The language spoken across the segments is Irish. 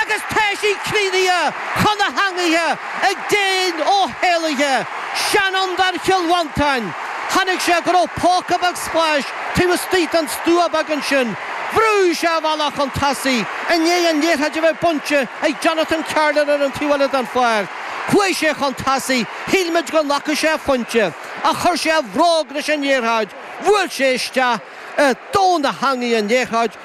Agus tá sí críochnaithe chun na heangaí ag Dean Ó hÉalaithe, seanfhondúir Chill Mhantáin, chonaic sé go raibh póca beag spáis taobh istigh den stua beag ansin. Bhrúigh sé a bhealach chun tosaigh i ndiaidh an liathróid a bheith bainte ag Jonathan Carlin ar an taobh eile den pháirc. Chuaidh sé chun tosaigh, shíl muid go nglacfadh sé a phointe, ach chuir sé a bhróg leis an liathróid, bhuail sé isteach i dtóin na heangaí an liathróid,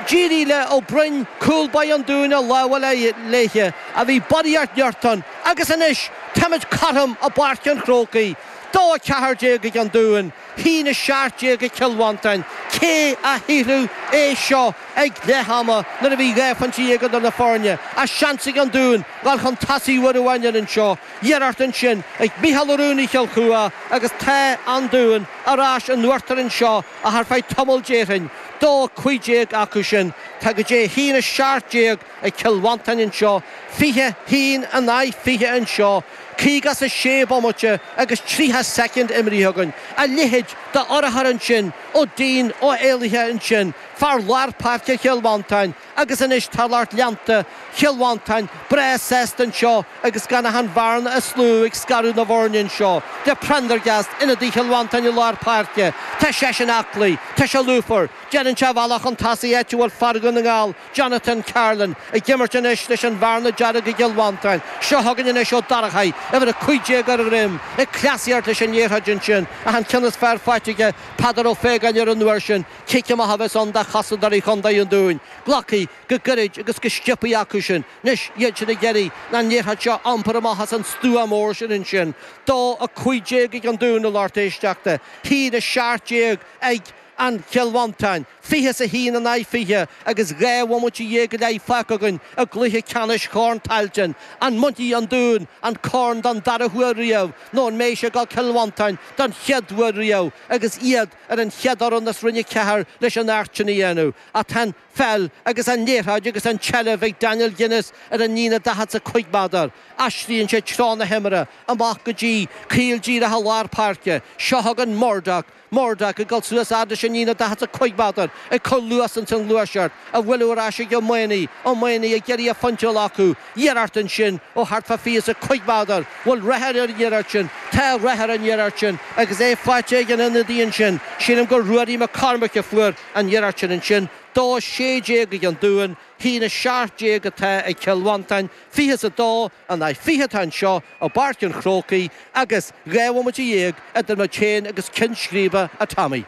D'éirigh le Ó Broin cúl báire an Dúin a lámh a fháil léithe ach bhí barraíocht nirt ann agus anois táimid cothrom i bPáirc an Chrócaigh, dó 14 ag an Dún, hAon 17 ag Cill Mhantáin. Cé a shílfeadh é seo ag leath ama nuair a bhí dhá phointe dhéag idir na foirne ach seans ag an Dún dhul chun tosaigh uair amháin eile anseo iarracht ansin ag Micheál Ó Rúnaí Chill Chua agus tá an Dún ar ais in uachtar anseo Ach ar feadh tamaill déarfainn, dó a cúig déag acu sin, tá go dtí a haon a seacht déag ag Cill Mhantáin anseo, fiche haon in aghaidh fiche anseo, caoga is a sé bomaite agus triocha soicind imrithe againn, a leithéid d'urchar ansin ó Dean Ó hÉalaithe ansin, fear lár páirce Chill Mhantáin, Agus anois tá lucht leanta Chill Mhantáin breá sásta anseo agus gan ach an bhearna is lú ag scaradh na bhfoirne anseo le Prendergast, ionadaí Chill Mhantáin i lár páirce. Tá seisean aclaí, tá sé lúfar, déanann sé a bhealach chun tosaigh áit a bhfuil fear Dhún na nGall, Jonathan Carlin, ag imirt anois leis an Bhearna Dearg i gCill Mhantáin. Seo chugainn anois Ó Dorchaí, uimhir 15 ar a dhroim, ag cleasaíocht leis an liathróid ansin ach an ceann is fearr faighte ag Peadar Ó Faogáin ar an uair sin. Cic amach a bheas ann do chosantóirí Chontae an Dúin. Glactha go gairid agus go sciopthaí acu sin. Anois, iad sin ag iarraidh an liathróid seo a iompar amach as an stua mór sin ansin. Dó a cúig déag ag an Dún a lucht éisteachta. Haon a seacht déag ag an Chill Mhantáin. Fiche is a haon in aghaidh fiche agus dhá bhomaite dhéag go leith fágtha againn i gcluiche ceannais Chorn Tailteann. An mbainfidh an Dún an corn don dara huair riamh nó an mbeidh sé ag dul Cill Mhantáin don chéad uair riamh agus iad Ar an chéad fhoireann as roinn a ceathair leis an éacht sin a dhéanamh. Ach tá an feall agus an liathróid agus an tseilbh ag Daniel Guinness ar an líne daichead 's a cúig méadar. Aistríonn sé treo na himeartha amach go dtí caol díreach i lár páirce. Seo chugainn Murdoch. Murdoch ag dul suas fhad leis an líne daichead 's a cúig méadar, ag cur luas ins an ghluaiseacht, a bhfuil ar ais ag Ó Maonaigh. Ó Maonaigh ag iarraidh a phointe a fháil acu. Iarracht ansin, ó thart fá fiche 's a cúig mhéadar, bhfuil rath ar an iarracht sin. Tá rath ar an iarracht sin, agus é faighte ag an ionadaí ansin, sílim gur Ruairí Mac Cormaic a fuair an iarracht sin ansin, dó is sé déag ag an Dún, haon is seacht déag atá ag Cill Mhantáin, fiche is a dó in aghaidh fiche atá anseo i bPáirc an Chrócaigh, agus dhá bhomaite dhéag idir muid féin agus ceann scríbe, a Tommy.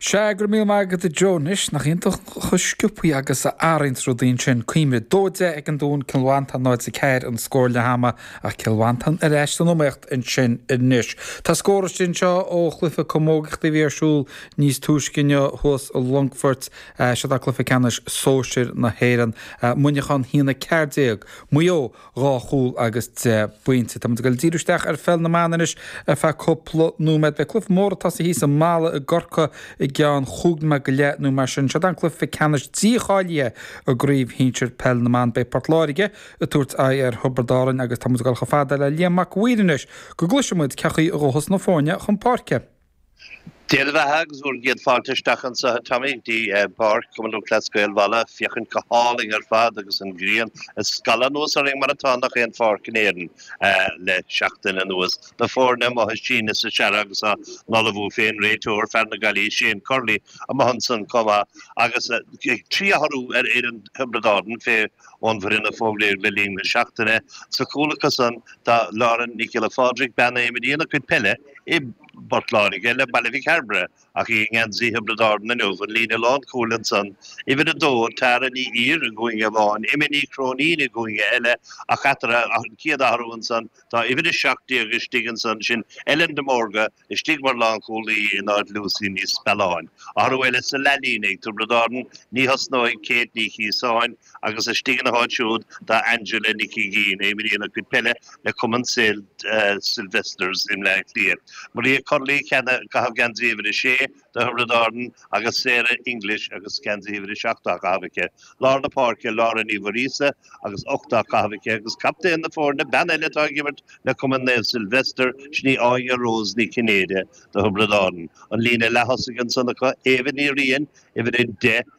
Sea, go raibh míle maith agat a Joe. Anois, nach iontach chomh sciopthaí agus a athraíonns rudaí ansin. Cuimhnigh dó deich ag an Dún, Cill Mhantáin 0 4 an scór leath ama ach Cill Mhantáin ar ais san iomaíocht ansin anois. Tá scór istigh anseo ó chluiche camógaíochta a bhí ar siúl níos túisce inniu thuas i Longfort. Seo atá cluiche ceannais sóisir na hÉireann. Muineachán a haon 14 Maigh Eo. dhá chúl agus deich bpointe. Táimid ag dul díreach isteach ar pheil na mban anois ar feadh cúpla nóiméad. Beidh cluiche mór ag tosaí thíos i Mala i gCorca i gceann chúig nóiméad go leith nó mar sin. Seod an cluife ceannais dícháilíthe i gcraobh shinsir peil na mban. Beidh Port Láirge ag tabhairt aghaidh ar Thiobrad Árainn agus táimid ag dul chomh fada le Liam Mac Uidhir anois go gcloisfimid cén chaoi a ghabhfas na foirne chun páirce. Dé bheatha agus bhur gcéad fáilte isteach anso, a Tommy, go dtí páirc Chumann Lúthchleas Gael Mhala, féachaint go hálainn ar fad agus an ghrian ag scalladh anuas orainn mar atá i ngach aon pháirc in Éirinn le seachtain anuas. Na foirne amuigh ag síneadh is ag searradh agus á n-ullmhú féin, réiteoir, fear na Gaillimhe, Shane Curley, amuigh ansan comh maith agus trí athrú ar fhoireann Thiobraid Árann fé ón bhfoireann a fógraíodh le linn na seachtaine. Sa chúl acu san tá Lauren Nic Giolla Phádraig, bean a imríonn a cuid peile i bPort Láirge le Baile Mhic Cairbre, ach í i ngeansaí Thiobraid Árann inniu. An líne lánchúil ansan, uimhir a dó, Tara Ní Ír i gcúinne amháin, Emma Ní Chróinín i gcúinne eile, ach eatarthu, an chéad athrú ansan, tá uimhir a seacht déag istigh ansan, sin Ellen de Mórdha, Istigh mar lánchúlaí in áit Lucy Ní Spealáin, athrú eile sa leathlíne ag Tiobraid Árann, ní thosnóidh Kate Ní Chíosáin agus istigh ina háit siúd tá Angela Nic Uiginn, imríonn a cuid peile le Cumann St Sylvesters i mBleá Cliath. Maria Curley, cheana, ag caitheamh geansaí uimhir a sé, Tiobraid Árann, agus Sarah English agus geansaí uimhir a seacht á chaitheamh aici. Lár na páirce, Laura Ní Mhuiríosa agus ocht á chaitheamh aici agus captaen na foirne, bean eile atá ag imirt le cumann Naomh Sylvester, sin í Áine Rose Ní Chinnéide do Thiobraid Árann. An líne leaththosaigh ansan acu, Éabha Ní Riain, uimhir a deich,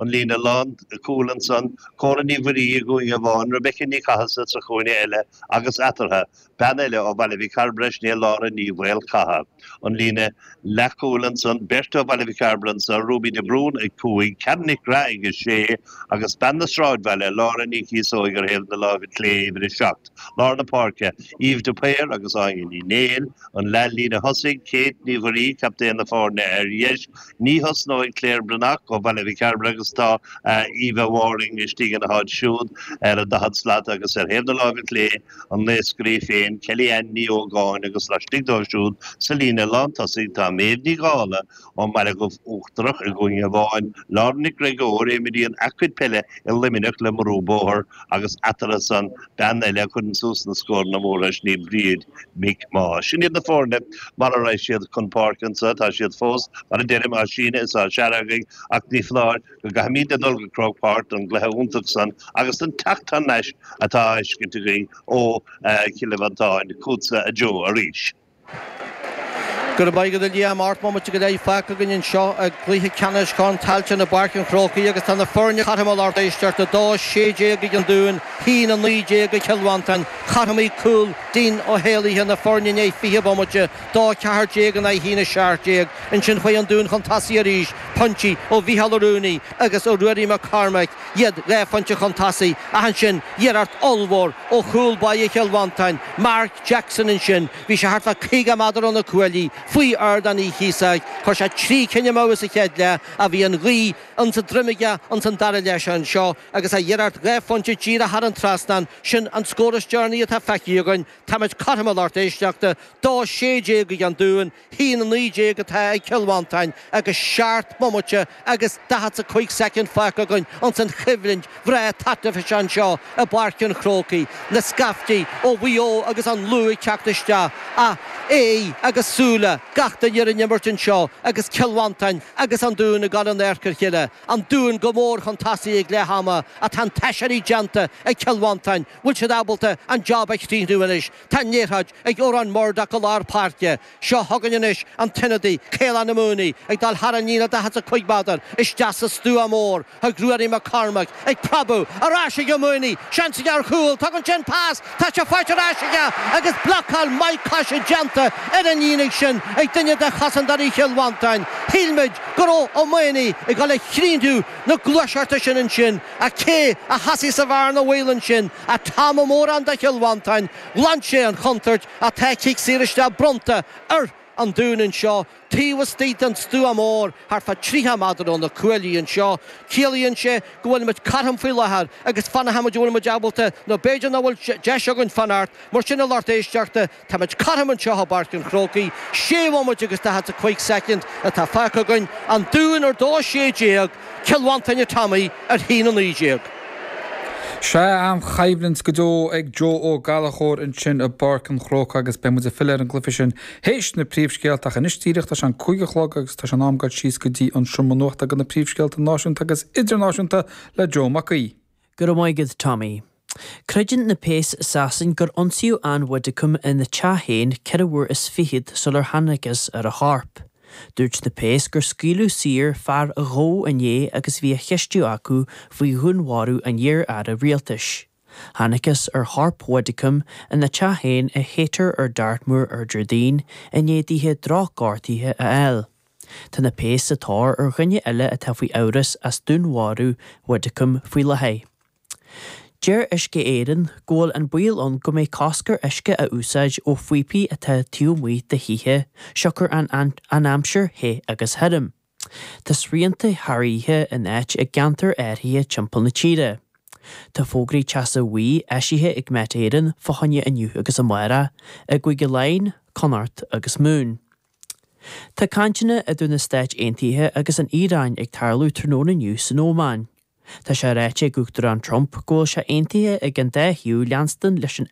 an líne lán cúil ansan, Córa Ní Mhuirí i gcúinne amháin, Rebecca Ní Chathasaigh sa chúinne eile agus eatartha, bean eile ó Bhaile Mhic Cairbre, sin í Lára Ní Mhaolchatha. An líne leathchúil ansan, beirt ó Bhaile Mhic Cairbre anso, Ruby de Brún ag cúig, Karen Nic Craith ag a sé, agus bean na Sráidbhaile, Lára Ní Chíosóig ar thaobh na láimhe clé, uimhir a seacht, lár na páirce, Eve de Paor agus Áine Ní Néill. An leath líne thosaigh, Kate Ní Mhuirí, captaen na foirne ar dheis, Ní thosnóidh Claire Breathnach ó Bhaile Mhic Cairbre agus tá Aoibhe Waring istigh ina háit siúd ar an daichead slat agus ar thaobh na láimhe clé an naoscaire í féin Kelly Ann Ní Ógáin agus laistigh dó siúd sa líne lán tosaigh tá Méabh Ní Dhálaigh ón mBaile Dhubh Uachtarach i gcúinne amháin, Lauren Nic Gréagóir, imríonn a cuid peile i Luimneach le Murroe Bóthar agus eatarthu san Bean eile a chuireann suas na scóranna móra is í Bríd McMaugh. Sin iad na foirne mar a raibh siad chun páirce anseo, tá siad fós, mar a deirim, á síneadh is á searradh ach ní foláir go gcaithfimíd a dhul go Croke Park don gcluiche iontach san agus don teacht thar n-ais atá á fheiscint againn ó Chill Mhantáin. Fútsa a Joe arís. Go raibh maith agat a Liam. Ocht mbomaite go leith fágtha againn anseo i gcluiche ceannais Chorn Tailteann i bPáirc an Chrócaigh agus tá na foirne cothrom a lucht éisteachta, 2, 16 ag an Dún, 1, 19 ag Cill Mhantáin. Chothromaigh cúl Dean Ó hÉalaithe na foirne i ndiaidh fiche bomaite, 2, 14 in aghaidh 1, 17. Ansin chuaigh an Dún chun tosaigh arís, poinntí ó Mhícheál Ó Ruanaidh agus ó Ruairí Mac Cormaic. iad dhá phointe chun tosaigh ach ansin iarracht ollmhór ó chúl báire Chill Mhantáin, Mark Jackson Ansin bhí sé thart fá 50 meadar ó na cuaillí, faoi ardán Uí Chíosóig, chuir sé trí cinn amú sa chéad leath ach bhí an ghaoth ins an droim aige ins an dara leath anseo agus a iarracht dhá phointe díreach thar an trasnán, sin an scór is deireanaí atá feicthe againn, táimid cothrom a lucht éisteachta, 2:16 ag an Dún. 1:19 atá ag Cill Mhantáin agus seacht mbomaite agus daichead 's a cúig soicind fágtha againn ins an choimhlint bhreá taitneamhach seo anseo i bPáirc an Chrócaigh, na scaiftí ó Mhaigh Eo agus an Lú ag teacht isteach ach aghaidh agus súile gach duine ar an imirt anseo agus Cill Mhantáin agus An Dún ag gabháil in adharca a chéile. An Dún go mór chun tosaigh ag leath ama ach tá an t-aiséirí déanta ag Cill Mhantáin. Bhfuil siad ábalta an job a chríochnú anois? Tá an liathróid ag Odhrán Murdock i lár páirce. Seo chugainn anois an t-ionadaí, Caolán Ó Maonaigh, ag dul thar an líne 45 meadar isteach sa stua mór. Chuig Ruairí Mac Cormaic, ag preabadh, ar ais ag Ó Maonaigh. Seans aige ar chúl. Tugann sé an pas. Tá sé faighte ar ais aige agus blocáil maith coise déanta ar an líne sin ag duine de chosantóirí Chill Mhantáin. Shíl muid go raibh Ó Maonaigh ag dul a chríochnú na gluaiseachta sin ansin. Ach cé a sheasaigh sa bhearna bhaoil ansin ach Tom Ó Móráin do Chill Mhantáin? Ghlan sé an chontúirt ach tá cic saor isteach bronnta ar An Dún anseo taobh istigh den stua mór thart fá 30 meadar ó na cuaillí anseo. Ciallaíonn sé go bhfuilimid cothrom faoi láthair agus fanfaimid an bhfuilimid ábalta nó b'fhéidir nach bhfuil deis againn fanacht mar sin a lucht éisteachta Táimid cothrom anseo i bPáirc an Chrócaigh. Sé bhomaite agus daichead 's a cúig soicind atá fágtha againn, An Dún ar dó a sé déag, Cill Mhantáin a Tommy ar haon a naoi déag. Sea an-choimhlint go deo ag Joe Ó Gallachóir ansin i bPáirc an Chrócaigh agus beidh muid ag filleadh ar an gcluiche sin théis na príomhscéalta ach anois díreach tá sé an cúig a chlog agus tá sé in am goil síos go dtí an seomra nuachta go na príomhscéalta náisiúnta agus idirnáisiúnta le Joe Mac Aoidh. Go raibh maith agat Tommy. Creideann na péas i Sasain gur ionsaíodh Ann Widdecombe ina teach féin ceithre huair is fichead sular thángthas ar a corp. Dúirt na péas gur scaoileadh saor fear a gabhadh inné agus a bhí á cheistiú acu faoi dhúnmharú an iar-aire rialtais. Thángthas ar chorp Widdecombe ina teach féin i Haytor ar Dartmoor ar Déardaoin i ndiaidh di drochghortuithe a fháil. Tá na péas sa tóir ar dhuine eile atá faoi amhras as dúnmharú Widdecombe faoi láthair. Deir Uisce Éireann go bhfuil an baol ann go mbeidh cosc ar uisce a úsáid ó phíopaí atá taobh amuigh de thithe siocair an aimsir the agus thirim. Tá srianta thar oíche in áit i gceantair áirithe timpeall na tíre. Tá fógraí teasa bhuí eisithe ag Met Éireann fá choinne inniu agus amárach i gCúige Laighin, Connacht agus Mumhain. Tá cainteanna idir na Stáit Aontaithe agus an Iaráin ag tarlú tráthnóna inniu san Ómáin. Tá sé ráite ag Uachtarán Trump go bhfuil sé aontaithe ag an dá thaobh leanstan leis an